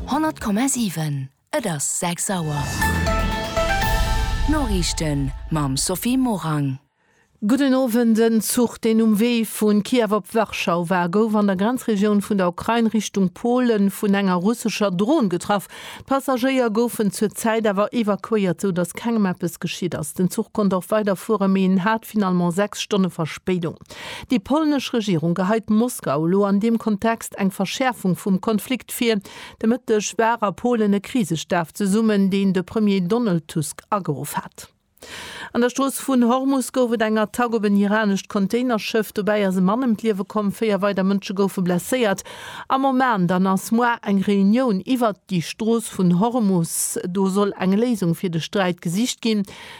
100,7 Et ass 6 Auer. D'Noriichten mam Sophie Morang. Gudden Owend. En Zuch, deen um Wee vu Kiew op Warschau war, gouf an der Grenzregioun vun der Ukrain Richtung Polen vun enger russescher Dron getraff. D'Passagéier goufen zur Zäit awer evakuéiert, sou datt kengem eppes geschitt ass. Den Zuch konnt och weiderfueren, mee en hat finalement 6 Stonne Verspéidung. Déi polnesch Regierung geheit Moskau elo an deem Kontext eng Verschäerfung vum Konflikt vir. De Mëtteg war a Polen e Krisestaf zesummen, deen de Premier Donald Tusk ageruff hat. An der Strooss vun Hormus gouf et eng Attack op en iranescht Containerschëff. Dobäi ass e Mann ëm d'Liewe komm, véier weider Mënsche goufe blesséiert. Am Oman dann ass moar eng Reunioun iwwert déi Strooss vun Hormus. Do soll eng Léisung fir de Sträit gesicht ginn.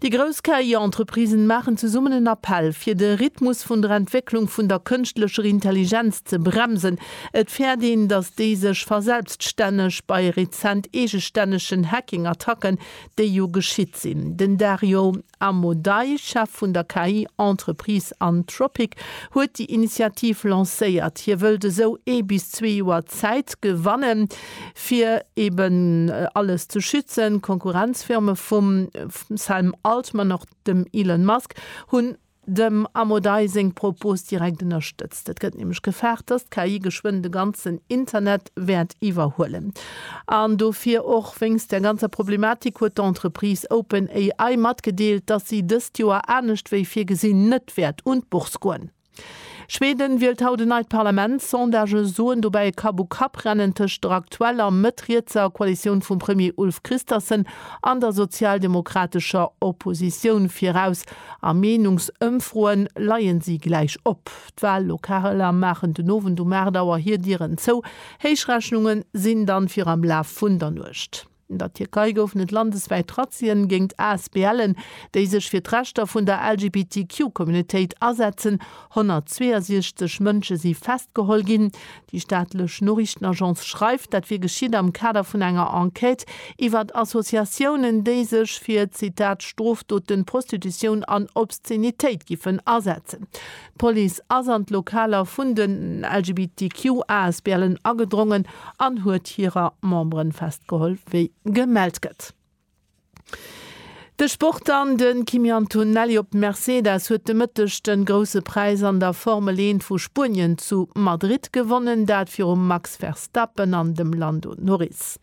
Déi grouss KI-Entreprisen maachen zesummen en Appell, fir de Rhythmus vun der Entwécklung vun der kënschtlecher Intelligenz ze bremsen. Et fäert een, datt déi sech verselbststänneg bei rezent eegestännegen Hacking-Attacken, déi jo geschitt sinn. Den Dario Amodei, Chef vun der KI-Entreprise Anthropic, huet déi Initiativ lancéiert. Hie wëllt esou ee bis zwee Joer Zäit gewannen, fir eben alles ze schützen, d'Konkurrenzfirme vum Sam Altman, och dem Elon Musk, hunn dem Amodei seng Propos direkt ënnerstëtzt. Et gëtt nämlech gefaart, datt d'KI geschwënn de ganzen Internet wäert iwwerhuelen. An dofir, och wéinst där ganzer Problematik, huet d'Entreprise OpenAI matgedeelt, datt si dëst Joer, anescht wéi virgesinn, net wäert un d'Bourse goen. Schweden wielt haut en neit Parlament. Sondagë soen dobäi e Kapp-u-Kapp-Rennen tëscht der aktueller mëtt-rietser Koalitioun vum Premier Ulf Kristersson an der sozialdemokratescher Oppositioun viraus. A Meenungsëmfroe leien si gläich op. D'Wallokaler maachen den Owend um 8 Auer hir Dieren zou. Héichrechnunge sinn dann fir am Laf vun der Nuecht. An der Tierkei goufen et landeswäit Razzien géingt ASBLen, déi sech fir d'Rechter vun der LGBTQ-Communautéit asetzen. 162 Mënsche si festgeholl ginn. Déi staatlech Noriichtenagence schreift, dat wier geschitt am Kader vun enger Enquête iwwer Associatiounen, déi sech fir, Zitat, Strofdoten, Prostitutioun an Obszenitéit giffen asetzen. D'Police ass an d'Lokaler vun den LGBTQ-Asbl'en agedrongen an huet hirer Memberen festgeholl, wéi gemellt gëtt. De Sport dann, De Kimi Antonelli op Mercedes huet de Mëtteg de Grousse Präis an der Formel 1 vu Spuenien zu Madrid gewonnen, dat virum Max Verstappen an dem Lando Norris.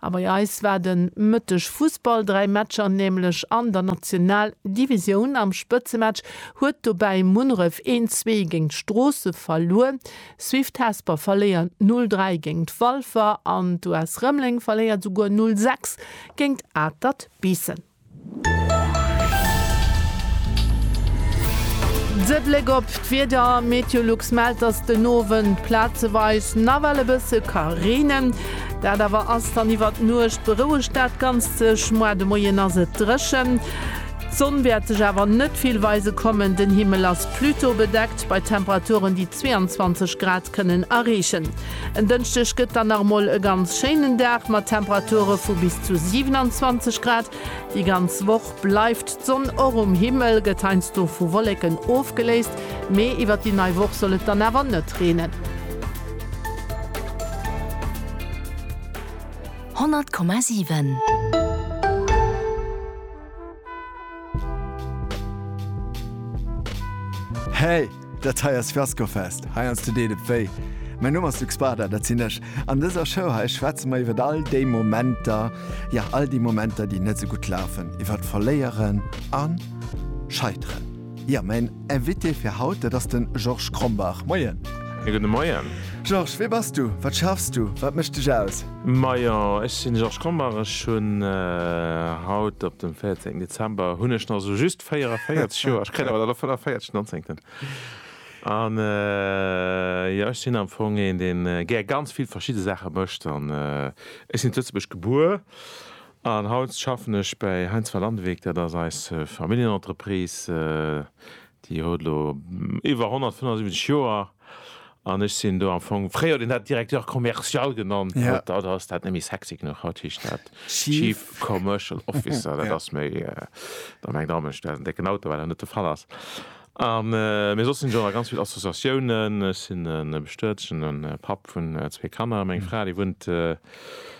A bei eis war de Mëtteg Fussball, dräi Matcher nämlech an der National Divisioun. Am Spëtzematch huet dobäi Munneref een Zwee géint d'Stroosse verluer, Swift Hesper verléiert 0 3 géint Walfer an d'US Rëmeleng verléiert souguer 0 6 géint Atert Biissen. De Bléck op d'Wieder, Meteolux mellt, dass den Owend plazeweis nawell e bësse ka reenen, dat awer ass dann iwwert d'Nuecht, berouegt dat Ganzt sech, moar de Moien ass et dréchen. D'Sonn wäert sech awer net vill weise kommen, den Himmel ass plutôt bedeckt bei Temperaturen, déi 22 Grad kënnen erreechen. En Dënschdeg gëtt dann nach mol e ganz schéinen Dag mat Temperature vu bis zu 27 Grad. Déi ganz Woch bleift d'Sonn och um Himmel, gëtt heiansdo vu Wolleken ofgeléist, mee iwwert déi nei Woch soll et dann awer net reenen. 100,7. Hey! Dat hei ass Fiascofest, hei ans de deet et wéi. Mäin Numm ass Luc Spada, dat sinn ech. An dëser Show hei schwätze mer iwwert all déi Momenter, jo all déi Momenter, déi net sou gutt lafen, iwwert Verléieren a Scheiteren. Jo, mäin Invité fir haut, dat ass de Georges Krombach. Moien. Ja, gudde Moien. Georges, wee bass du? Wat schaffs du? Wat mécht dech aus? Majo, ech sinn de Georges Krombach. Ech hunn haut op dem 14 Dezember hunn ech nach esou just 44 Joer. Ech kréien awer dann och 45 den 19. An jo, ech sinn am Fong een, dee gär ganz vill verschidde Saache mécht. An ech sinn zu Lëtzebuerg gebuer An haut schaffen ech bäi Heinz van Landewyck, dat ass eis Familljenentreprise, déi huet elo iwwer 175 Joer an ech sinn do am Fong, fréier huet een dat Directeur commercial genannt, haut ass dat net méi sexy genuch, haut heescht dat Chief Commercial Officer, dat ass méi, da mengt der Amesch, dat ass en décken Auto, wat awer net de Fall ass. Mee soss sinn ech och a ganz vill Associatiounen, ech sinn e bestëertene Papp vun zwee Kanner, meng Fra déi wunnt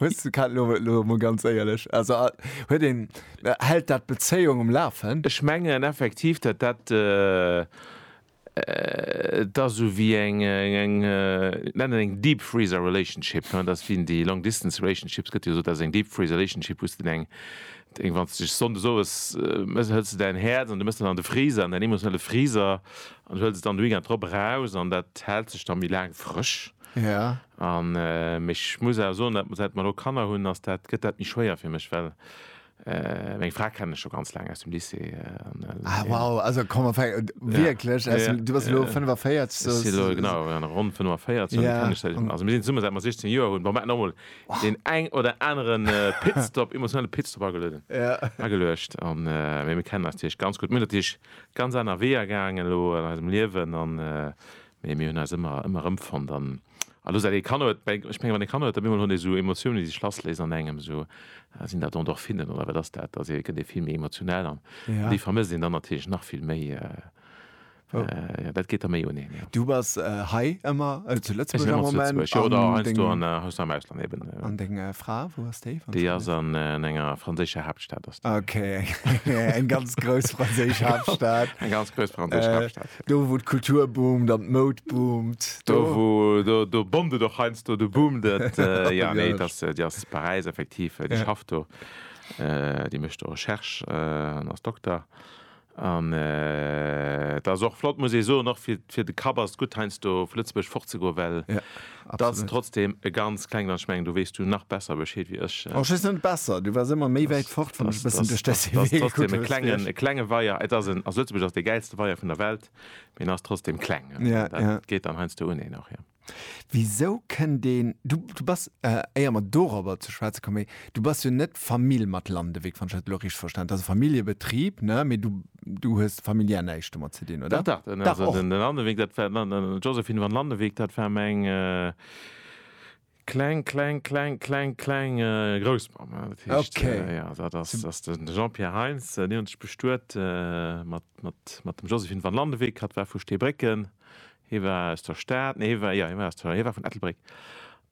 Hues du kat lo lo mol ganz éierlech also huet een hält dat d'Bezéiung um lafen? Ech mengen effektiv dat dat et ass sou wéi eng eng et nennen eng deep freezer relationship hein dass wéi déi long distance relationships gëtt jo gesot dat ass eng deep freezer relationship wou s de eng eng wann s de dech sonndes owes mes hëls de däin Häerz an du mes dat an de Freezer an däin emotionelle Freezer an huels et dann de Weekend drop eraus an dat hält sech da méi laang frësch. Ja. An mee ech muss awer soen, dat säit mer elo Kanner hunn, ass dat, gëtt dat méi schwéier fir mech, well meng Fra kennen ech scho ganz laang aus dem Lycée an elo. Ah wow, also komm ma fäng wierklech aus dem, du bass elo 45, sou. Ech si elo genau an ronn 45 an déi kennen ech säit ech, also mir sinn zesummen säit mer 16 Joer hunn. Bon, mer hätten och mol deen eng oder aneren Pitstop, emotionale Pitstop agelueden, ageluecht an, mee mir kennen eis natierlech ganz gutt. Mir hunn natierlech ganz aner Weeër gaangen elo an eisem Liewen an Mee mir hunn eis ëmmer, ëmmer erëmfonnt. An elo säit ee Kanner huet, ech menge wann ee Kanner huet, op eemol hunn déi esou Emotiounen, déi sech lassléisen an engem, esou, sinn dat Endorphinen oder wat ass dat, da gëtt ee vill méi emotional an déi vermësst een dann natierlech nach vill méi. Jo, dat geet da méi un een, jo. Du bass hei ëmmer zu Lëtzebuerg am Moment? Ech sinn ëmmer zu Lëtzebuerg, jo. Oder heiansdo an, heiansdo am Ausland eben. An deng Fra, wou ass déi? Déi ass an enger franséischer Haaptstad ass déi. Ok, eng ganz grouss franséisch Haaptstad. Eng ganz grouss franséisch Haaptstad. Do wou d'Kultur boomt an d'Moud boomt. Do wou, do, do boomt et och heiansdo, do boomt et. Jo, nee, et ass, déi ass zu Paräis effektiv, déi schafft do, déi mécht do Recherche an ass Dokter. An et ass och flott, muss ee soen, och fir, fir de Kapp ass et gutt heiansdo vu Lëtzebuerg fortzegoen, well Et ass trotzdem e ganz klengen an ech mengen do weess du nach besser Bescheed wéi ech. Oh, ech weess net besser, du waars ëmmer méi wäit fort wann ech e bëssen duerch däi Serie gekuckt hunn. Trotzdem e klengen, e klenge Weier. Et ass en, also Lëtzebuerg ass dee gäilste Weier vun der Welt, mee en ass trotzdem kleng. Ja, ja. Dat geet dann heiansdo uneen och, jo. Wisou kënnt een, du, du bass, éier mer dorobber ze schwätze kommen, du bass jo net Famill mat Landewyck, wann ech dat elo richteg verstanen, et ass e Familljebetrib, ne, mee du Du hues familiär näischt domat ze dinn, oder? Dach, dach. Dach, och. Landeweek, dat war den Josephine van Landeweek, dat war meng kleng, kleng, kleng, kleng, kleng Groussmamm. Dat heescht, jo, dat ass, dat ass den Jean-Pierre Heintz. Déi hunn sech bestuet mat, mat, mat dem Josephine van Landeweek. Hatt war vu Steebrécken. Hie war aus der Stad, nee, hie war, jo, hie war aus der, hie war vun Ettelbréck.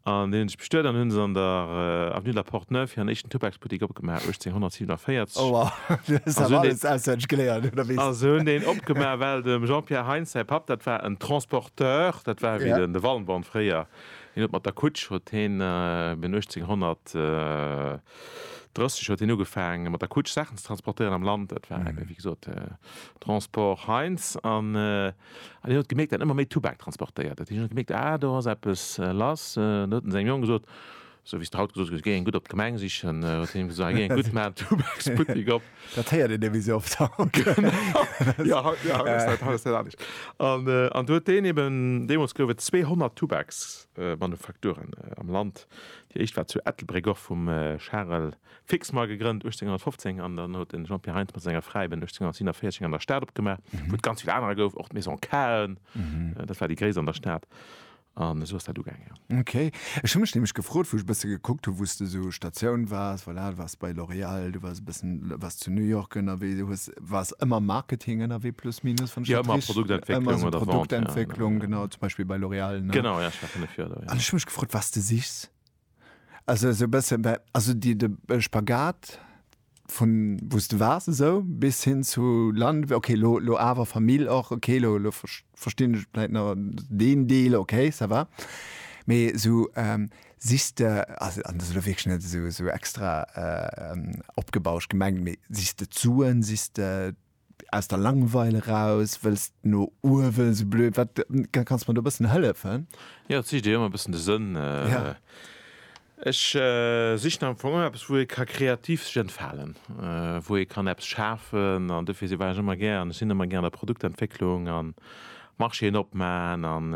An deenen ech bestuet an hunn se an der Avenue de la Porte Neuve hiren éischten Tubaksbuttik opgemaach, 1847. Oh wow, du hues awer alles auswenneg geléiert, oder wéi? A se hunn deen opgemaach, well dem Jean-Pierre Heintz säi Papp, dat war en Transporteur, dat war ewéi de Wallenborn fréier, deen huet mat der Kutsch, huet heen bin 1830 huet heen ugefaangen, mat der Kutsch Saachen ze transportéieren am Land. Dat war ewéi gesot Transport Heintz. An hien huet gemierkt, datt ëmmer méi Tubak transportéiert huet. Hien huet gemierkt, ah, do ass eppes lass. An huet en sengem Jong gesot, esou wéi s de haut gesot hues, Géi eng gutt op d'Gemeng sichen. Huet hien him gesot, ah, géi eng gutt, maan en Tubaksbuttek op. Dat héiert een ewéi sou oft haut. Genau, jo, haut, jo, haut ass dat anescht. An do huet deen eben, deemools gouf et 200 Tubaksmanufakturen am Land. Déi éischt war zu Ettelbréck, och vum Charel Fixmar gegrënnt 1815 an dann huet de Jean-Pierre Heintz mat senger Fräi ben 1847 eng an der Stad opgemaach, wou et ganz vill anerer gouf, och d'Maison Cahen, dat war déi gréisst an der Stad. An esou ass dat ugaangen, jo. Okay. Ech hu mech nämlech gefrot, wou ech e bësse gekuckt hu, wou s de esou Statioun waars, voilà, du waars bei L'Oréal, du waars e bëssen, waars zu New York ënnerwee, du hues, waars ëmmer am Marketing ënnerwee plus minus, wann ech dat rich-. Jo, ëmmer Produktentwécklung oder Vente, ja. Ëmmer esou Produktentwécklung, genau, zum Beispill bei L'Oréal, ne? Genau, ja, ech war fënnef Joer do, ja. An ech hu mech gefrot, wat s de sichs. Also esou e bësse bei, also déi de Spagat vun wou s de waars esou bis hin zu Land, okay lo lo awer Famill och, okay lo lo verstinn ech vläit nach deen Deel, okay ça va. Mee esou sichs de, also an dat ass elo wierklech net esou esou extra opgebauscht gemengt, mee sichs de d'Suen, sichs de Aus der Langweil eraus wëlls de no uewen, sou blöd wat, kanns mer do e bëssen hëllefen? Jo, et sicht ee jo ëmmer e bëssen de Sënn. Ja. Ech sichen am Fong ëmmer eppes, wou ee ka kreativ sech entfalen, wou ee kann eppes schafen an dofir war ech ëmmer gär an ech sinn ëmmer gär an der Produktentwécklung an Marchéen opman an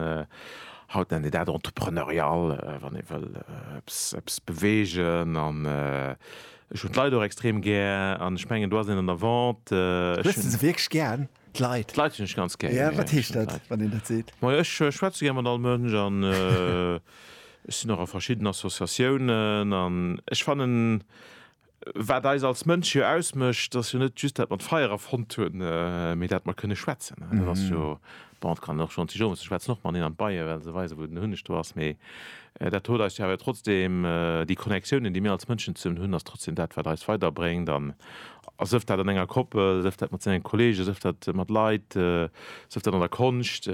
haut nennt een dat entrepreneurial, wann ee wëll eppes, eppes beweegen an Ech hunn d'Leit och extrem gär an ech mengen do ass een an der Vente. Hues de se wierklech gär, d'Leit? D'Leit hunn ech ganz gär. Jo, wat heescht dat, wann een dat seet? Majo, ech schwätze gär mat all Mënsch an ech sinn och a verschidden Associatiounen an ech fannen, wat eis als Mënsche jo ausmécht, ass jo net just dat mer d'Feier erfonnt hunn, mee dat mer kënne schwätzen. Dat ass jo. Bon, et kann een och schonn zu Jomus, ech schwätzen och mateneen an d'Beie well se weise wou den Hunneg do ass, mee dat huet eis jo awer trotzdem, déi Connectiounen déi mir als Mënschen zesummen hunn ass trotzdem dat wat eis weiderbréngt an sëf dat an enger Koppel, sëf dat mat sengen Kollegen, sëf dat mat Leit, sëf dat an der Konscht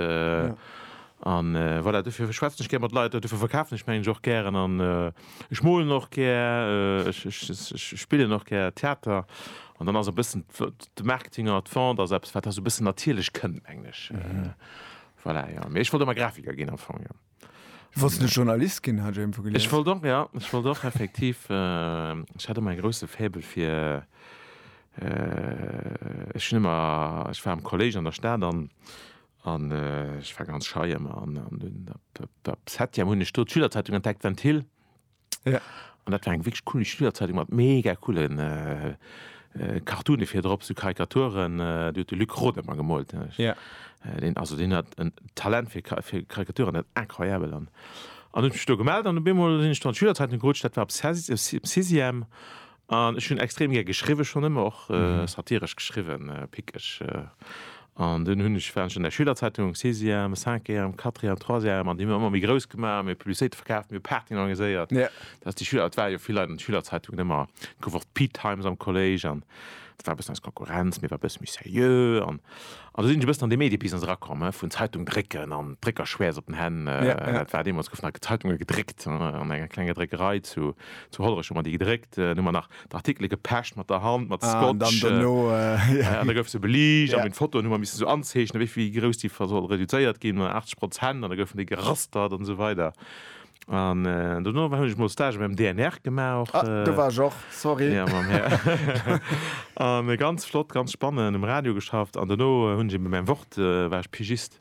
an voilà. Dofir schwätzen ech gär mat Leit, dofir verkafen ech meng ech och gären an. Ech molen och gär, ech spillen och gär Theater an dann ass e bëssen de Marketing an der Vente ass eppes, wat da esou e bëssen natierlech kënnt, mengen ech. Voilà, jo. Mee ech wollt ëmmer Grafiker ginn am Fong, jo. Du wollts emol Journalist ginn, hat ech iergendwou gelies. Ech wollt och, jo, ech wollt och effektiv, ech hat ëmmer e grousse Faible fir, ech hunn ëmmer, ech war am Kollége an der Stad an An ech war ganz schei ëmmer. An dunn op der Septième hunn ech do d'Schülerzeitung entdeckt, Ventil. An dat war eng wierklech cool Schülerzeitung mat mega coole Cartoone vir drop, sou Karikaturen. Déi huet de Luc Roth ëmmer gemoolt. Deen, also deen hat en Talent fir Karikaturen, dat ass incroyabel. An hunn ech mech do gemellt an op eemol sinn ech do an d'Schülerzeitung gerutscht. Dat war op Sixième. An ech hunn extrem gär geschriwwen, schonn ëmmer och satiresch geschriwwen, pickeg. An dunn hunn ech, war ech an der Schülerzeitung, am Sixième, am Cinquième, am Quatrième, am Troisième, an déi hu mir ëmmer méi grouss gemaach, mir Publicitéite verkaaft, mir Partyen organiséiert, dass déi Schüler, et ware jo vill Leit an de Schülerzeitungen, ëmmer gouf och d'Peatimes am Kolléisch an et war e bëssen eis Konkurrenz, mir ware e bësse méi seriö. An do sinn ech e bëssen an dee Mediebusiness erakomm, he, vun Zeitung drécken an Dréckerschwäerz op den Hänn. Dat war deemools, goufen nach Zeitunge gedréckt an enger klenger Dréckerei zu Hollerech, hu mer déi gedréckt. Dann hu mer nach d'Artikele gepecht mat der Hand, mat Scotch. An da gouf se beliicht a mir hunn d'Fotoen, hu mer missen esou anzeechnen, wéi grouss déi soll reduzéiert ginn, 80 Prozent, an da goufen déi gerastert an esou weider. An äh, dono war hunn ech mol Stage beim DNR gemaach och. Ah, äh, du war och, sorry. Ja, mam Herr. an äh, ganz flott, ganz spannend, um Radio geschafft. An dono äh, hunn ech eben beim Wort, äh, war ech Pigist.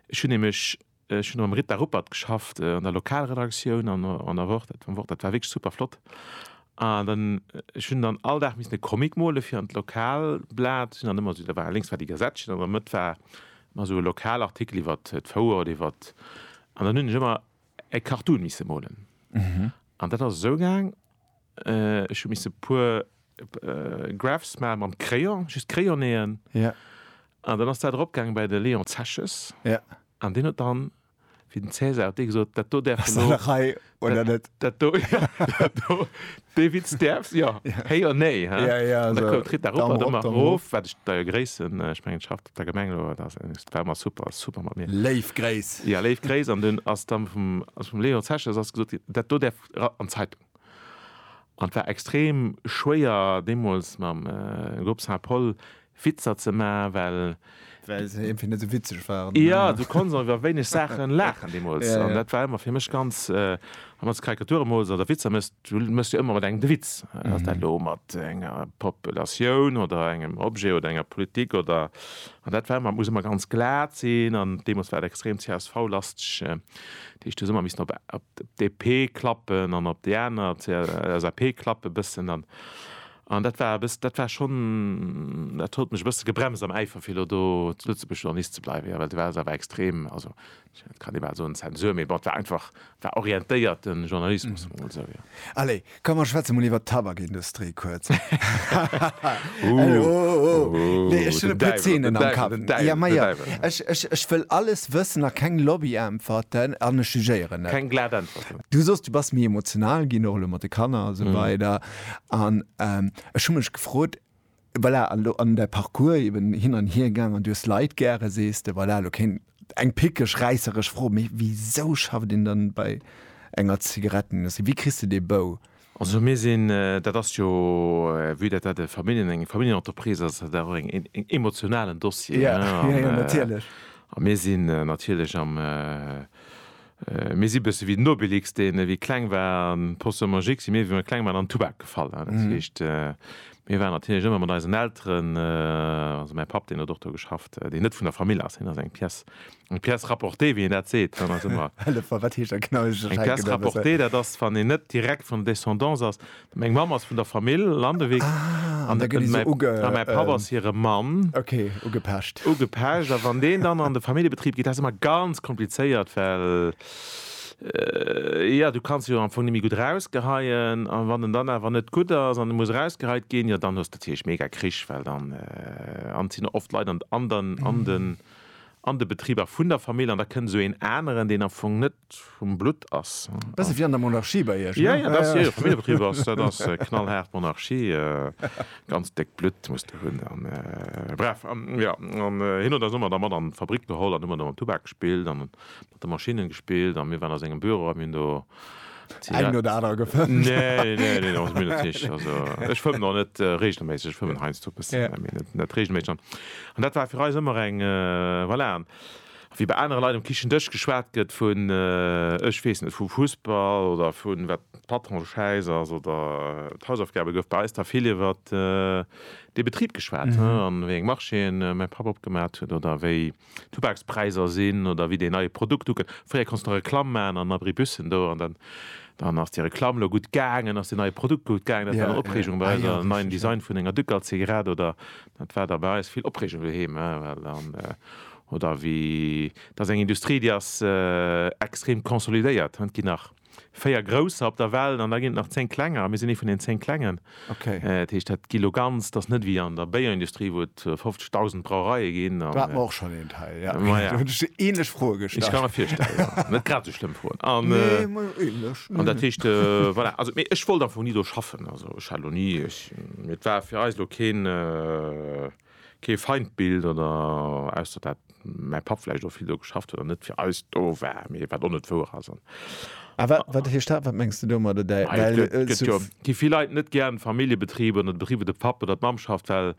Ech hunn nämlech äh, ech hunn am Rita Ruppert geschafft, äh, an der Lokalredaktioun an, äh, an der Wort, dat, am Wort, dat war wirklich super flott. An dann, äh, ech hunn dann all Dag missen e Comic mole fir an d'Lokalblat. Sinn dann ëmmer so, da war links war die Gazettchen, an der Mëtt war Mä esou e Lokalartikel iwwer d'Fouer oder iwwer. An dann hunn ech ëmmer e Cartoon misse molen. An dat ass esou gaang, ech hu misse e puer Graphs maache mam Crayon, just Crayonnéeën. An dann ass dat eropgaangen bei de Léon Zeches. An deen huet dann. wéi den Cäsar huet dee gesot, dat do däerf elo. Rei oder net? Dat do, ja, dat do, dee Witz däerf, ja, héi oder néi, hä? Ja, ja, an da koum d'Ritt da rop an domat erof, wat ech deier Gréiss, ech mengen, et schafft op der Gemeng elo, dat war ëmmer super, super mat mir. Léif Gréiss. Ja, léif Gréiss. An dunn ass da vum, ass vum Léon Zeche ass gesot ginn, dat do däerf an d'Zeitung. An et war extrem schwéier deemools mam Groupe Saint-Paul, Witzer ze maachen, well. Well se iergendwéi net esou witzeg waren. Jo, du konns och iwwer wéineg Saachen laachen deemools. An dat war ëmmer fir mech ganz, wann s du Karikature mools oder Witzer méchs, du méchs jo ëmmer mat engem de Witz. Ass dat elo mat enger Populatioun oder engem Objet oder enger Politik oder. An dat war ëmmer, et muss ëmmer ganz glat sinn. An deemools war et extrem CSV-lasteg, dat heescht, du hues ëmmer missen op d'DP klappen an op déi aner, CLSAP, klappen e bëssen. An An dat war e bëss-, dat war schonn, dat huet mech e bësse gebremst am Äifer fir elo do zu Lëtzebuerg Journalist ze bleiwen, jo, well do war se awer extrem, also et kann ee bal soen Zensur, mee bon, et war einfach, et war orientéierte Journalismus, soe mer emol esou, jo. Allez, komm mer schwätze mol iwwert d'Tabakindustrie kuerz. Elo, oh, oh, oh, nee, ech hunn e puer Zeenen am Kapp. Den Däiwel, den Däiwel, den Däiwel. Ech, ech, ech wëll alles wëssen a keng Lobbyäntwerten an ech jugéieren net. Keng glat Äntwerten. Du soss, du bass méi emotional ginn, och elo mat de Kanner a esou weider. An ech hu mech gefrot, voilà, an elo an däi Parcours eben hin an hier gaangen, du hues Leit gäre, sees de, voilà, elo kéint eng pickeg, räisseresch Fro, mee wisou schafft een dann bei enger Zigarettenindustrie? Wéi kriss de dee Bou? Also mir sinn, dat ass jo, vue dat dat e Familljen, eng Familljenentreprise ass, ass dat och en emotionalen Dossier, hein. Jo, jo, natierlech. A mir sinn natierlech am Mir si bësse wéi den Obelix, deen, wéi e kleng war, an d'Potion magique si mir, wéi mir kleng waren, an den Tubak gefall. Dat heescht, mir waren natierlech ëmmer mat eisen Elteren, also mäi Papp, deen huet och do geschafft, deen net vun der Famill ass, hien ass eng pièce, eng pièce rapportée, wéi een dat seet, hien ass ëmmer. Hëllef mer, wat heescht dat genau? Eng pièce rapportée, dat ass, wann een net direkt vun der Descendance ass, Meng Mamm ass vun der Famill Landewyck an mäi Papp ass hire Mann. Okay, ugepecht. Ugepecht. A wann deen dann an de Familljebetrib geet, dat ass ëmmer ganz komplizéiert, well, jo, du kanns jo am Fong net méi gutt erausgeheien. A wann en dann awer net gutt ass an e muss erausgeheit ginn, jo, dann hues de natierlech mega Krich, well dann, an et sinn och oft Leit an den, an de Betriber vun der Famill an da kënnt esou een aneren, deen am Fong net vum Blutt ass. Bësse wéi an der Monarchie bei Iech, ne? Jo, jo, jo, Familljebetrib ass, dat ass knallhaart Monarchie. Ganz déckt Blutt muss de hunn a bref. An jo, an hien huet eis ëmmer da mat an d'Fabrik geholl an hu mer da mam Tubak gespillt a mat de Maschinnen gespillt a mir waren a sengem Büro a mir hunn do Zigaretten. Eng oder aner gefëmmt. Nee, nee, nee, also mir net richteg. Also ech fëmmen och net reegelméisseg, ech fëmmen heiansdo e bëssen, mee net reegelméisseg. An dat war fir eis ëmmer eng, voilà. Wéi bei anere Leit um Kichendësch geschwat gëtt vun, ech weess net, vum Fussball oder vun wat d'Patron schäiss ass oder d'Hausaufgabe, gouf bei eis da vill iwwer de Betrib geschwat an wéi eng Marchéen mäi Papp opgemat huet oder wéi d'Tubakspräiser sinn oder wéi deen neie Produkt ukoum. Fréier konntst de nach Reklamm maachen an Abribussen do an dann ass déi Reklamm lo gutt gaangen, ass deen neie Produkt gutt gaangen. Dat war dann Opreegung bei eis, e neien Design vun enger Ducal-Zigarett oder dat war da bei eis vill Opreegung doheem, well dann Oder wéi, et ass eng Industrie, déi ass extrem consolidéiert. Et ginn nach véier Grousser op der Welt an da ginn et nach zéng Klenger a mir sinn ee vun den zéng Klengen. Dat heescht, dat gi lo ganz, et ass net wéi an der Béierindustrie, wou et 50.000 Brauereie ginn. Do hat mer och schonn een Teil, jo. Do hunn ech déi änlech Froe gestallt. Ech ka mer virstellen, jo. Net grad esou schlëmm Froen. Nee, ma änlech. An dat heescht, voilà, also mee ech wollt am Fong ni do schaffen. Also ech hat lo ni, mir, et war fir eis lo keen. Kee Feindbild oder, ausser dat mäi Papp vläicht och vill do geschafft huet an net fir eis do war, mee wat och net wouer ass. A wat heescht dat? Wat mengs de domadder? Well. Gi vill Leit net gären Familljebetriber oder de Betrib wou de Papp oder d'Mamm schafft, well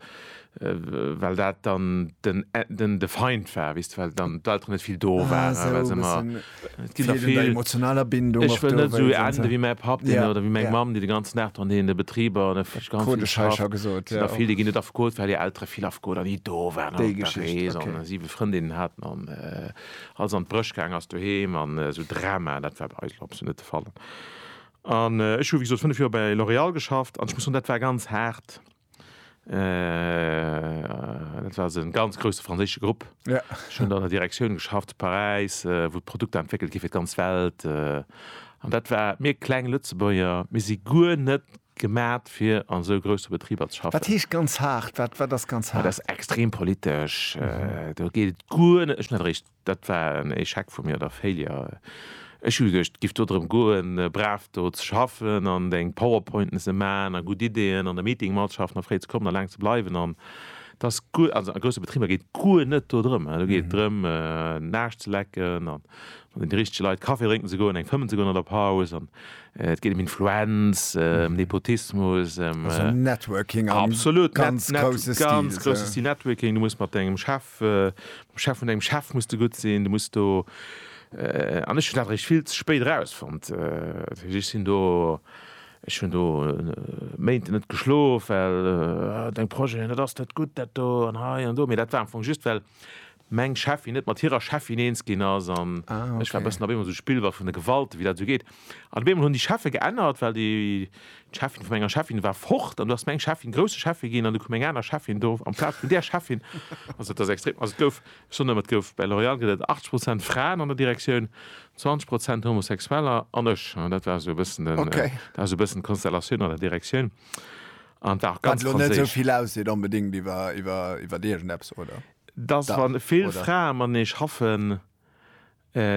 well dat dann den de Feind war, wéisst de, well dann d'Elteren net vill do waren, well se ëmmer. Et ginn der vill. Wéi eng emotionaler Bindung och do. Ech wëll net esou enden wéi mäi Papp deen oder wéi meng Mamm déi de ganzen Dag dran heen de Betriber an ech ganz vill geschafft. Ech krut ech hei scho gesot. Et sinn der vill déi ginn net afgeholt well hir Eltere vill afgeholt an ni do waren an op der Rees an siwe Frëndinnen haten an alles an d'Bréch gaangen ass doheem an esou Dramaen. Dat war bei eis elo absolut net de Fall. An ech hu wéi gesot 5 Joer bei L'Oréal geschafft an ech muss soen dat war ganz haart. Dat war e ganz grousse franséische Grupp. Ech hunn an der Direktioun geschafft, Paräis, wou d'Produkter entwéckelt gi fir d'ganz Welt. An dat war, mir kleng Lëtzebuerger, mir si guer net gemat fir an esou grousse Betriber ze schaffen. Wat heescht ganz haart? Wat ass ganz haart? Dat ass extrem politesch. Do geet et guer net. Dat war en Echec vu mir, oder Failure. Ech hu geduecht, et giff do drëm goen, brav do ze schaffen an deng Powerpointen ze man a gutt Ideen an der Meetingmatschaft nach fréi ze kommen a laang ze bleiwen. An dass guer, also a grousse Betriber geet guer net do drëm. Do geet et drëm, den Aarsch ze lecken a mat den richtege Leit Kaffi drénken ze goen, eng fëmmen ze goen an der Paus. An et geet ëm Influenz, ëm Nepotismus, ëm. Also Networking am ganz grousse Stil. Networking, ganz grousse Stil Networking. Du muss mat dengem Chef, Chef vun dengem Chef muss de gutt sinn, du muss do, an ech hunn dat eréischt vill ze spéit erausfonnt, ech sinn do, ech hunn do Méint net geschlof, well deng Projeten, dat ass net gutt dat do an hei an do, mee dat war am Fong just well meng Cheffin net mat hirer Cheffin eens ginn ass an ech war e bëssen op eemol esou Spillball vun de Gewalten, wéi dat esou geet. An op eemol hunn déi Cheffe geännert, well déi d'Cheffin vu menger Cheffin war fort an du ass meng Cheffin grousse Cheffe ginn an du koum eng aner Cheffin do am Plaz vun där Cheffin. Also et ass extrem. Also et gouf, ech soen ëmmer, et gouf bei L'Oréal gëtt et 80 Prozent Fraen an der Direktioun, 20 Prozent Homosexueller an ech. An dat war esou e bëssen den, Okay. dat war esou e bëssen d'Konstellatioun an der Direktioun an et war och Wat ganz elo net esou franséisch. vill ausseet onbedéngt iwwer, iwwer, iwwer iergendeppes, oder? Dass, Dach, wa vill oder? Frae matenee schaffen,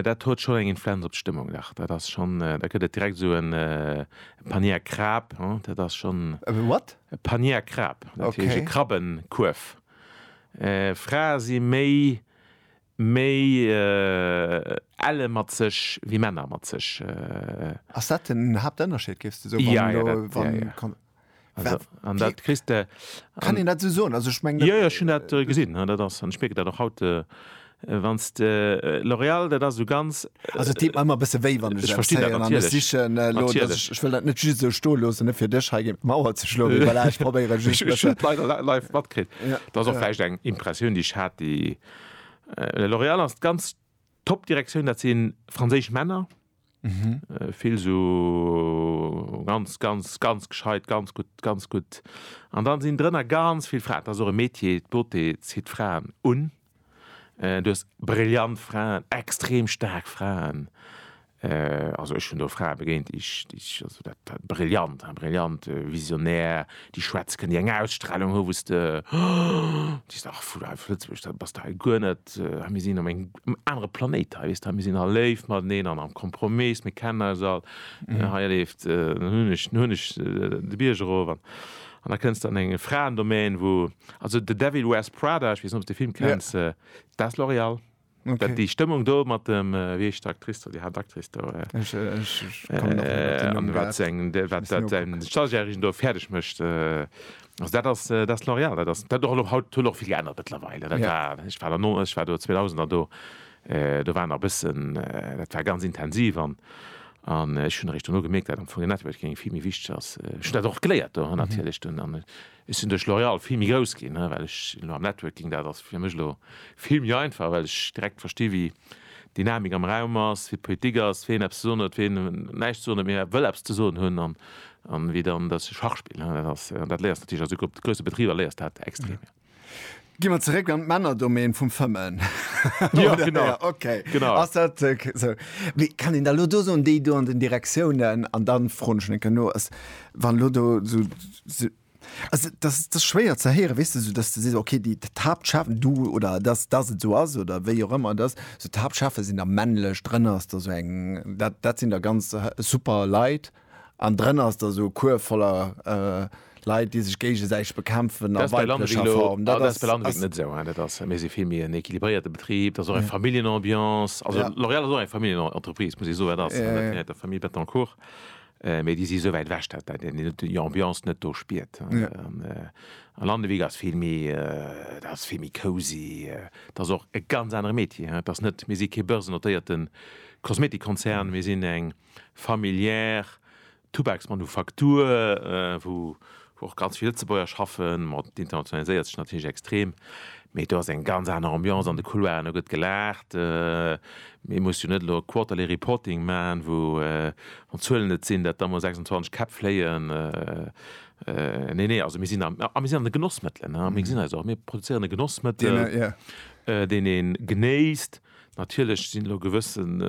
Dat huet schonn eng Influenz op d'Stëmmung, dach. Dat ass schonn, da gëtt et direkt esou e Panier Krab, he, dat ass schonn. E what? E Panier Krab, dat heescht. Okay. E Krabbenkuerf. Frae si méi, méi elle mat sech wéi Männer mat sech. Ass dat den Haaptënnerscheed, géifs de soen, wann elo, wann. Also, an dat kriegst du. Kann ich dat so soen? Also, ich meine. Ja, ja, schon dat äh, gesinn. Dat ass, an speke dat auch haut. Äh, Äh, wann äh, L'Oréal dat as so ganz äh, also, äh, immer bisse wéi wann ich verste sichchen äh, ich will dat net just so sto los fir Dich ha Mauer ze schlo ich probéiere live matkrit ja. dat ja. eng Impressioun die hat die äh, L'Oréal as ganz D'Pop-Direktioun, dat si franséisch Männer, vill esou ganz, ganz, ganz gescheit, ganz gutt, ganz gutt. An da sinn drënner ganz vill Fraen. Dat ass och e Metier, d'Beauté zitt Fraen un. Du hues brillant Fraen, extrem staark Fraen, Also ech hunn do Frae begéint, déi ech, déi ech, also dat, dat brillant, hein, brillant, visionär, déi schwätzken, déi eng Ausstrahlung hu, wou s de, déi s de, ach, vu hei, vu Lëtzebuerg, da bass de hei guer net, hein, mir sinn op engem anere Planéit hei, weess de, hein, mir sinn all léif mateneen an am Kompromiss, mir kennen eis all, hei leeft, dann hunn ech, hunn ech de Bierg erof an an da kënns de an eng Fraendomaine, wou, also The Devil Wears Prada, ech weess net, ob s de de Film kenns, dat ass L'Oréal. Okay. Déi Stëmmung do mat dem, wéi heescht d'Actrice do, déi Haaptactrice do? Ech, ech, ech kommen nach net op den Numm grad. Wat säin Stagiairchen do fäerdeg mécht, also dat ass, dat ass L'Oréal, dat ass, dat och haut, huet och vill geännert mëttlerweil. Dat war, ech war der no, ech war do 2000 der do, do war nach e bëssen, dat war ganz intensiv an, an ech hunn eréischt dono gemierkt, dat am Fong den Networking vill méi wichteg ass. Ech hunn dat och geléiert do natierlech dunn an. Ech sinn duerch L'Oréal vill méi grouss ginn, well ech elo am Networking, dat ass fir mech elo vill méi einfach, well ech direkt versti wéi d'Dynamik am Raum ass, wéi d'Politik ass, wien eppes ze soen huet, wien näischt ze soen huet, mee wëll eppes ze soen hunn, an wéi dann dat Schachspill ass. Dat léiers natierlech, also op grousse Betriber léiers dat extrem. Gi mer zeréck an d'Männerdomän vum Fëmmen. Jo, genau. Ja, okay. Genau. Ass dat äh, k- so. Wie kann een da lo do soen, déi do an den Direktiounen an dann froen ech enke no, ass wann lo do so, so also das das schwéier ze héieren, weess de, so dass du sees okay, déi d'Haaptchef du oder dass dass et sou ass oder wéi och ëmmer dass so d'Haaptchefe sinn da männlech, drënner ass da sou eng dat dat sinn da ganz äh, super Leit. An drënner ass da sou Cours voller Leit, déi sech géigesäiteg bekämpfen a weiblecher Form. Dat ass bei Lannewick net esou. Dat ass, mir si vill méi en equilibréierte Betrib. Dat ass och eng Familljenambiance. Also L'Oréal ass och eng Familljenentreprise, muss ee soen. Dat ass gehéiert der Famille Bettencourt. Mee déi si esou wäit ewech, dat een déi Ambiance net do spiert. A Lannewick ass vill méi, dat ass vill méi cosy. Dat ass och e ganz anere Metier. Dat ass net, mir si kee börsennotéierten Kosmetikkonzern. Mir sinn eng. familiär Tubaksmanufaktur, wou och ganz vill Lëtzebuerger schaffen, ma et internationaliséiert sech natierlech extrem. Mee do ass eng ganz aner Ambiance an de Couloiren, do gëtt gelaacht. Ee muss jo net elo e Quarterly Reporting maachen, wou, wann d'Zuelen et sinn, dat da mol 26 Käpp fléien. Nee, nee, also mir sinn am, a mir sinn an de Genossmëttelen, mir gesinn eis och, mir produzéieren e Genossmëttel, deen ee genéisst. Natierlech sinn elo gewëssen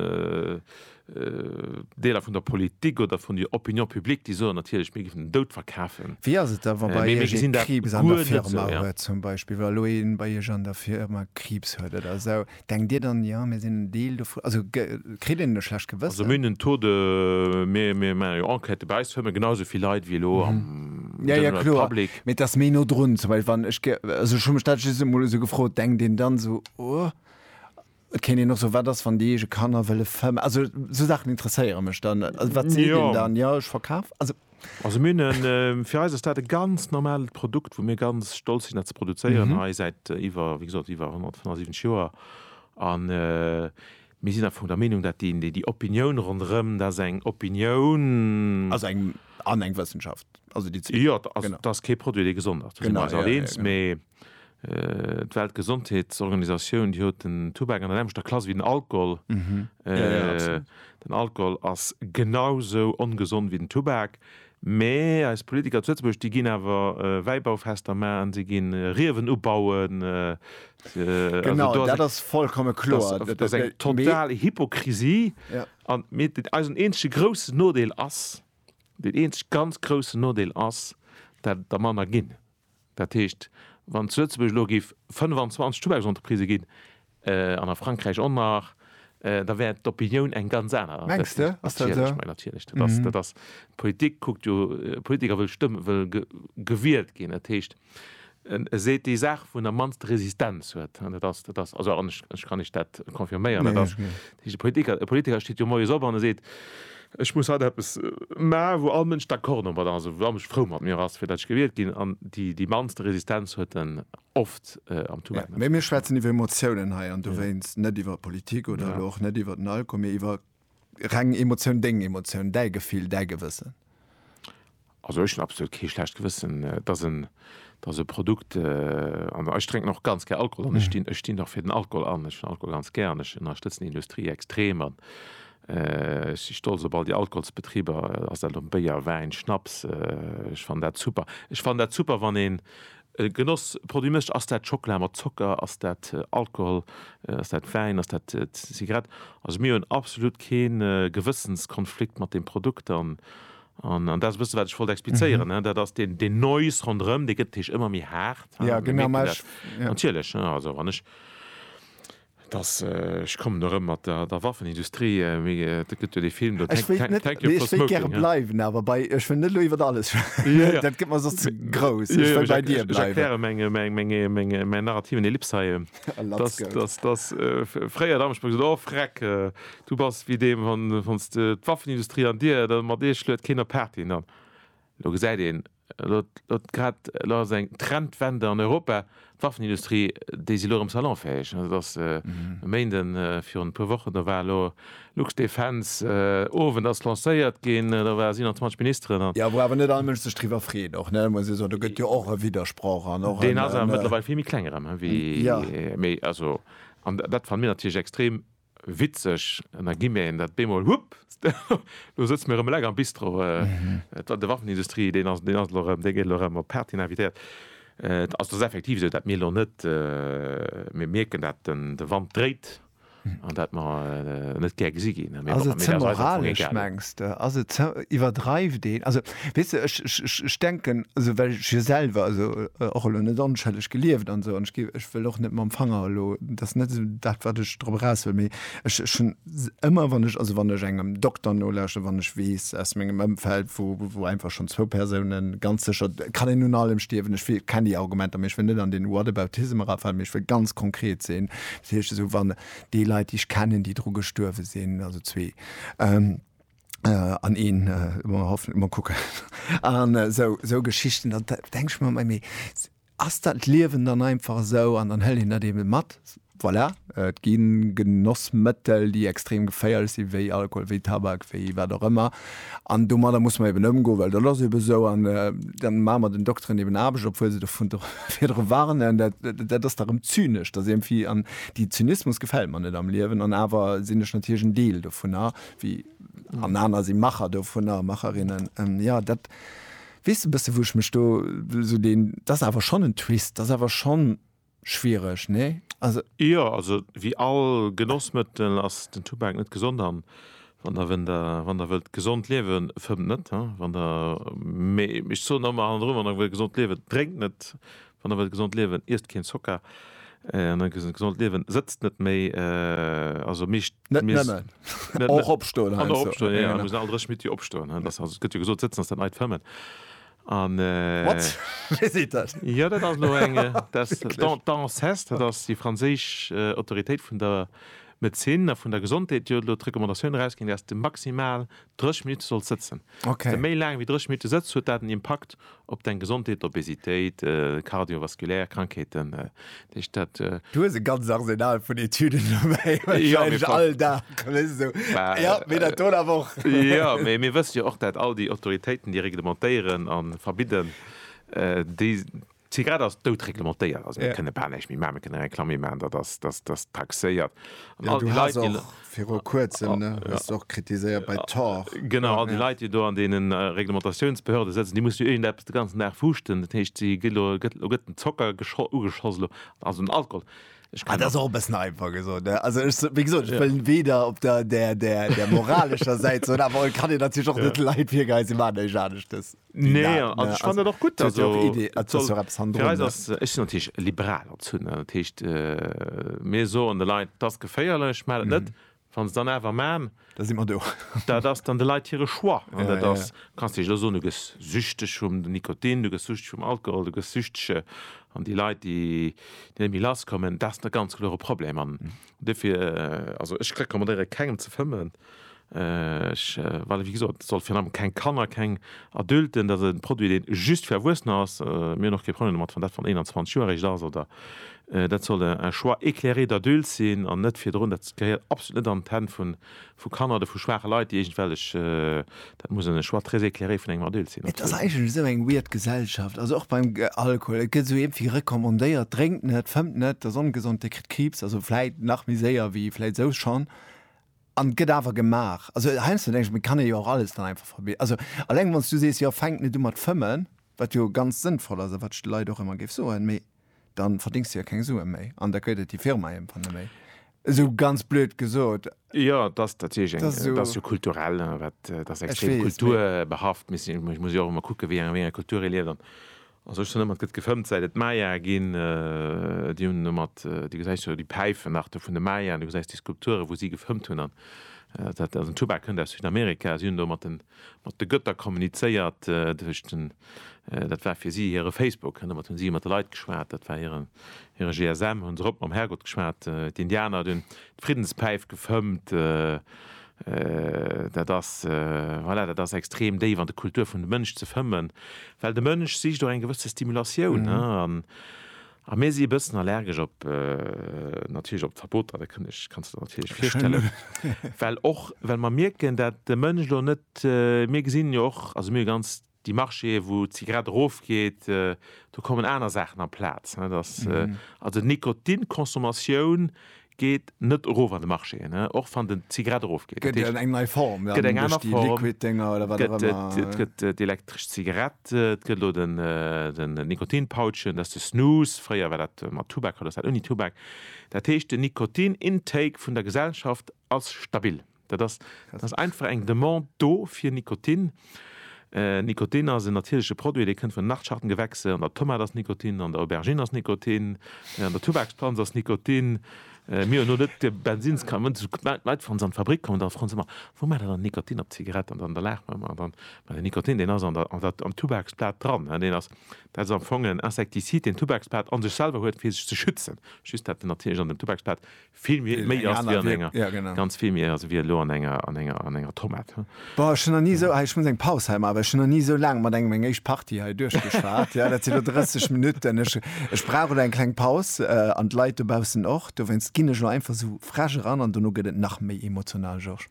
Deeler vun der Politik oder vun der Opinion publique, déi soen natierlech, mir géifen den Doud verkafen. Wéi ass et da, wa bei Iech ee Kriibs an der Firma huet zum Beispill, wa elo ee bei Iech an der Firma Kriibs huet oder esou? Denkt Dir dann, jo, mir sinn en Deel dovun? Also kritt een e schlecht Gewëssen? Also mir hunn en Taux de, mir maache jo Enquêten, bei eis huerme genau esou vill Leit wéi elo am general public. Jo, jo, kloer, mee et ass méi no drun zum Beispill, wann ech, also ech hu mech dat just emol esou gefrot, denkt een dann esou, oh. Et kéint een och soen, wat ass, wann déi eege Kanner wëlle ver-, also sou Saachen interesséiere mech dann. Also wat seet een dann? Jo, ech verkaf, also. Also mir hunn e, fir eis ass dat e ganz normalt Produkt, wou mir ganz stolz sinn dat ze produzéieren hei säit iwwer, wéi gesot, iwwer 175 Joer. A mir sinn am Fong der Meenung, dat déi, déi Opinioun ronderëm, dat ass eng Opinioun. Ass eng, an eng Wëssenschaft, also déi zwee. Jo, also dat ass kee Produit, dee gesond ass, do si mir eis all eens, mee. D'Weltgesondheetsorganisatioun, déi huet den Tubak an der selwechter Klass wéi den Alkohol. Den Alkohol ass genau esou ongesond wéi den Tubak. Mä eis Politiker zu Lëtzebuerg, déi ginn awer Wäibaufester maachen, si gi Riewen ubauen. Genau, dat ass vollkomme kloer. Dat ass eng total Hypokrisie. An eisen eenzege groussen Nodeel ass, deen eenzege ganz groussen Nodeel ass, dat der manner ginn. Dat heescht, wann zu Lëtzebuerg elo géif 25 Tubaksentreprisen ginn, an a Frankräich och nach, da wär d'Opinioun eng ganz aner. Mengs de? Ass dat esou? Natierlech, natierlech. Dat ass, dat ass, d'Politik kuckt jo, e Politiker wëll stëmm, wëll gewielt ginn. Dat heescht, e seet déi Saach, wou en am mannste Resistenz huet. An dat ass, dat ass, also an ech, ech kann Iech dat confirméieren, dat ass, dat heescht, e Politiker, e Politiker steet jo moies op an e seet, Ech muss haut eppes maachen, wou all Mënsch d'accord domat ass, wou all Mënsch frou mat mir ass, fir datt ech gewielt ginn. An déi mannst Resistenz huet en oft am Tumult. Mä mir schwätzen iwwer Emotiounen hei, an dowéinst net iwwer Politik oder elo och net iwwer den Alkohol, mee iwwer reng Emotioun, deng Emotioun, däi Gefill, däi Gewëssen. Also ech hunn absolut kee schlecht Gewëssen, dass en, dass e Produkt, an ech drénken och ganz gär Alkohol an ech stinn, ech stinn och fir den Alkohol an, ech hunn Alkohol ganz gär an ech ënnerstëtzen déi Industrie extrem an ech si stolz op all déi Alkoholsbetriber, ass dat elo Béier, Wäin, Schnaps, ech fannen dat super. Ech fannen dat super, wann een e Genossproduit mécht, ass dat Schockela mat Zocker, ass dat Alkohol, ass dat Wäin, ass dat Zigarett. Also mir hunn absolut kee Gewëssenskonflikt mat deem Produkt an An dat ass e bëssen, wat ech wollt explizéieren, dat ass deen, deen Noise ronderëm, dee gëtt, Teech, ëmmer méi haart. Mir mierken dat natierlech, also wann ech, et ass, ech kommen erëm mat der Waffenindustrie, et gëtt jo dee Film do, Thank You For Smoking. Ech wéilt net, ech wéilt gäre bleiwen, awer bei, ech wëll net elo iwwer alles schwätzen, dat gëtt mer soss ze grouss, ech wëll bei dir bleiwen. Ech erkläre meng, mäin narrativen Ellips hei, dass, dass, dass fréier Dammerspuck sot, Oh Vreck, Du bass wéi deem, wann s de d'Waffenindustrie an dir der mat eech luet, keen op d'Party hin. An elo gesäit een, elo elo grad, elo ass eng Trendwende an Europa, d'Waffenindustrie, déi si elo erëm salonfäeg. Et ass e Méinden, virun e puer Wochen, do war elo Luxdefence Owend ass lancéiert ginn, do ware 27 Ministeren an. Jo, wou awer net all Mënsch sech driwwer freet och, ne, muss ee soen. Do gëtt jo och e Widdersproch an och en. Deen ass awer mëttlerweil vill méi kleng erëm, wéi, méi, also, an dat fannen mir natierlech extrem Witzeg, mä gi mir een dat bemol, hupp, elo sëtze mir erëm eleng am Bistro. Et war de Waffenindustrie, deen ass elo erëm, dee gëtt elo erëm op Party invitéiert. Et ass effektiv esou, dat mir elo net, mir mierken, dat de Wand dréit an dat mer net gär gesi ginn. Ass et ze moralesch, mengs de? Ass et ze, iwwerdreift een? Also Weess de, ech, ech, ech, ech denken, also well ech jo selwer, also och elo net onschëlleg gelieft an esou, an ech gi, ech wëll och net mam Fanger elo, dat ass net esou dat, wat ech drop eraus wëll, mee ech, ech hunn ëmmer, wann ech, also wann ech engem Dokter nolauschteren, wann ech weess aus mengem Ëmfeld, wou, wou einfach schonn zwou Persounen ganz sécher, kann een un allem stierwen, ech wél, kennen déi Argumenter, mee ech wëll net an deen Whataboutism erafalen, mee ech wëll ganz konkret sinn, dat heescht esou, wann déi Leit, déi ech kennen, déi dru gestuerwe sinn, also zwee, Äh, an een, äh, mer hoffen, mer kucken. An äh, sou, sou Geschichten, dann denk ich mer, mei, ass dat Liewen dann einfach sou an dann hëll een dat eben mat. Voilà, äh, et ginn Genossmëttel, déi extrem geféierlech sinn, wéi Alkohol, wéi Tabak, wéi wat och ëmmer. An domadder muss mer eben ëmgoen, well dat ass eben sou. An äh, dann maache mer den Dokteren eben Aarbecht, obwuel se dovun virdru warnen. Dat, dat ass da rëm zynesch, dass irgendwie, an déi Zynismus gefält mer net am Liewen. An awer sinn ech natierlech en Deel dovunner, wéi an aner si Macher dovunner, Macherinnen. Ähm, ja, dat wees du bësse, wou ech mech do so den, dat ass awer schonn en Twist, dat ass awer schonn schwiereg, nee? Also. Jo, also wéi all Genossmëttel ass den Tubak net gesond an wann der, wenn der, wann der wëllt gesond liewen, fëmmt net, wann der, mee ech soen ëmmer hannendrun, wann der wëllt gesond liewen, drénkt net, Wann der wëllt gesond liewen, iesst keen Zocker. An dann gesond gesond liewen, sëtzt net méi, also meescht Net Mies. nëmmen. Net net. Och opstoen An heiansdo. och opstoen, ja, ja, mir müssen all dräch Minutt jo opstoen, hein, dass, also et gëtt jo gesot, sëtzen ass dat neit fëmmen. An, What? Wee seet dat? jo, dat ass elo eng, dass Wierklech? d'A, d'ANSES, dat ass déi franséisch Autoritéit vun der Medezin a vun der Gesondheet, déi huet elo d'Recommandatioun erausginn, dass de maximal 30 Minutte sollt sëtzen. Okay. Wie méi laang wéi 30 Minutte sëtzt, huet dat en Impakt op deng Gesondheet, Obesitéit, kardiovaskulär Krankheeten. Dat heescht, dat. Du hues e ganzt Arsenal vun Etüden dobäi. Jo, mee. Wahrscheinlech all Dag, wéist du. Bah. Jo, mee dat do da awer och. Jo, mee mir wësse jo och, dat all déi Autoritéiten, déi reglementéieren a verbidden, déi D'Zigarett ass dout reglementéiert, also mir kënne bal näischt méi maachen. Mir kënne Reklamm méi maachen, datt ass, datt ass taxéiert. An all déi Leit, déi. Viru kuerzem, ne, hues de och kritiséiert bei Tor. Genau, all déi Leit, déi do an deene Reglementatiounspehörde sëtzen, déi mussen jo iergend eppes de ganzen Dag fuuschten. Dat heescht, si gi lo, gëtt, lo gëtt den Zocker gescho, ugeschoss lo, also den Alkohol. Ech kann. Dat ass och e bëssen einfach gesot, ne. Also ech, wéi gesot, ech wëll weder op der, der, der, der moralescher Säit soen, awer et kann een natierlech och net de Leit virgeheien, si maachen näischt aneschtes. Nee, also ne? ich fand dat och gutt. Also, ja och Idee, et soll, ja fir eis ass, ech sinn natierlech liberal als Hunn, dat heescht, äh, mir soen de Leit, dass geféierlech, maacht et mhm. net. Wann se dann awer man, da si man do. dat ass dann de Leiit hire Choix. An ja, dat ass, ja. kannst Dich lo soen, du gëss süchteg vum Nikotin, du gëss süchteg vum Alkohol, du gëss süchteg an déi Leit, déi net méi lasskommen, dat ass net ganz kloere Problem. An mhm. Dofir, also ech rekommandéiere kengem ze fëmmen, ech, well wéi gesot, et soll virun allem keng Kanner, keng Adulten, dat ass e Produit deen just fir Erwuessener ass. Mir hunn och kee Problem domat wann dat wann 21 Joer eréischt ass oder, dat soll un choix éclairé d'adultes sinn an net virdrun, dat gehéiert absolut net an d'Hänn vun vu Kanner oder vu schwaache Leit, déi iergendwellech, dat muss en Choix très éclairé vun engem Adulte sinn. Et ass eigentlech esou eng weird Gesellschaft, also och beim Alkohol, et gëtt esou iergendwéi recommandéiert, drénkt net, fëmmt net, dat ass ongesond, Dir kritt Kriibs, also vläit nach méi séier wéi vläit esou schonn, an et gëtt awer gemaach. Also heiansdo denke ech mir, et kann ee jo och alles dann einfach verbieden. Also alleng wann s du sees, jo fänkt net u mat fëmmen, wat jo ganz sënnvoll ass a wat ech de Leit och ëmmer géif soen, mee, dann verdings du ja keng Sue méi an da gëtt et déi Firma iergendwann net méi. Esou ganz blöd gesot. Jo, et ass natierlech eng, et ass jo kulturell, wat, et ass extrem kulturbehaft. Ech muss jo och ëmmer kucken, wéi enger Kultur ee lieft an a sech dann ëmmer, et gëtt gefëmmt säit et Maya ginn, déi hunn domat, du gesäis jo déi Päifen nach do vun de Maya an du gesäis déi Skulpture wou si gefëmmt hunn an dat, den Tubak kënnt aus Südamerika, si hunn do mat den, Mat de Götter kommunizéiert, dat war fir si hire Facebook, domat hunn si iwwer de Leit geschwat, dat war hire GSM, hunn se erop mam Herrgott geschwat. D'Indianer, déi hunn d'Friddenspäif gefëmmt. Dat ass, voilà, dat ass extrem déif an de Kultur vun de Mënsch ze fëmmen, well de Mënsch sicht och eng gewësse Stimulatioun. A mir si e bëssen allergesch op, natierlech op d'Verboter, dat kënnt, ech kanns der natierlech virstellen, well och well mer mierken, dat de Mënsch elo net, mir gesinn jo och, also mir hu ganz déi Marchéë wou d'Zigarett erofgeet, do kommen aner Saachen amplaz, net, also d'Nikotinconsommation Geet net erof an de Marché, och wann den Zigarett erof geet. Gëtt et eng nei Form, gëtt eng aner Form, Liquid Dénger oder wat och ëmmer. Et gëtt d'elektresch Zigarett, et gëtt elo den Nikotin Pouchen, dat ass de Snus, fréier war dat mat Tubak, haut ass dat ouni Tubak. Dat heescht den Nikotin Intake vun der Gesellschaft ass stabil. Dat ass, dat ass einfach eng Demande do fir Nikotin. Nikotin ass en natierleche Produit, dee kënnt vun den Nachtschattengewächse, an der Tomat ass Nikotin, an der Aubergine ass Nikotin, an der Tubaksplanz ass Nikotin. Mir hunn elo net de Bensins ka, wann d'Leit wann se an d'Fabrik kommen, da froen se ëmmer, Wou maacht der dann Nikotin op d'Zigarett? An dann da laache mer ëmmer, an dann, den Nikotin, deen ass an der, an der, am Tubaksblat dran. Deen ass, dat ass am Fong en Insektisid, deen d'Tubaksblat a sech selwer huet, fir sech ze schützen. Just dat natierlecht an dem Tubaksblat Vill méi ass wéi an enger. Jo, genau. Ganz vill méi ass wéi elo an enger, an enger, an enger Tomat. Boah, ech hunn nach ni esou, hei, ech muss eng Paus hei maachen, well ech hunn nach ni esou laang mat engem eng éischt Partie hei duerchgeschwat. Jo, dat sinn elo 30 Minutten. Ech, ech brauch elo eng kleng Paus, an d'Leit dobaussen och. Dowéinst ginn ech elo einfach esou frech eran an dono gëtt et nach méi emotional, Georges.